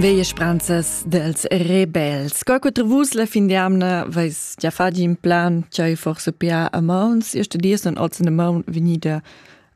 Veie spranzas dels rebels. Qua quattro vus la fin di amna vais già fadi in plan c'hai forse pia a mauns. Io studia son ozen a maun venida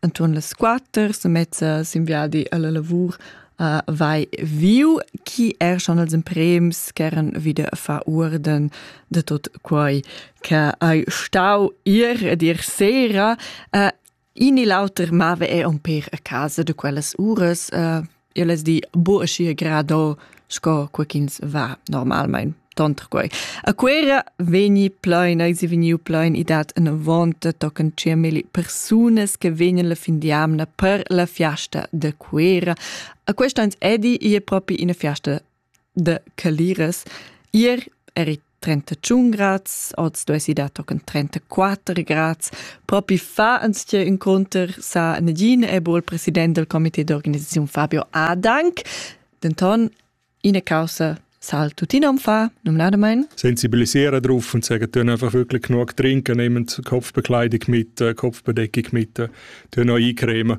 anturn las quatter, so mezza simviadi alla lavur a vai viu, chi er schon als imprems ch'eran wieder a fa urden de tot quai che hai stau ir ed ir sera. Uh, In e l'auter mava er un per a casa de quellas uras. Uh, io les di, bo aschi grado, sco quaquins va normalmein tonter quei. A Quera vegni plein, eis vegniu plein i dat una vonta tocan cemeli persunas che vegnan la fin di amna per la fiasta de Quera. A quest'ans edi ie propi ina fiasta da Caliras. Ier eri 31 grads, oz duessi dar tochen 34 grads. Propi fa anztge inconter sa Nadine Ebol, president del comité d'organisazione Fabio Adank. Denton, ina causa sal tuttina um fa, normalerweise. Sensibilisieren drauf und sagen, tun einfach wirklich genug trinken, nehmen Kopfbekleidung mit, äh, Kopfbedeckung mit, tun auch eincremen.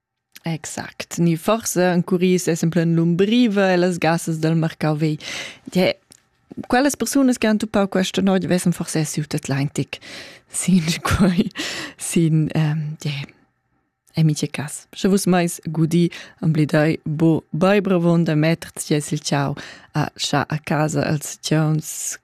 Exact. Ni forsa encurì ses en plan l'umbriva e las gassas dal marcau vei. Die, quellas persunas che han tuppau questa noia vessen forse siu tet l'eintic sin quei sin ähm, die amice cas. Sche vus mais gudi amblidai bo baibravon da metter ties il ciao a scha a casa als cions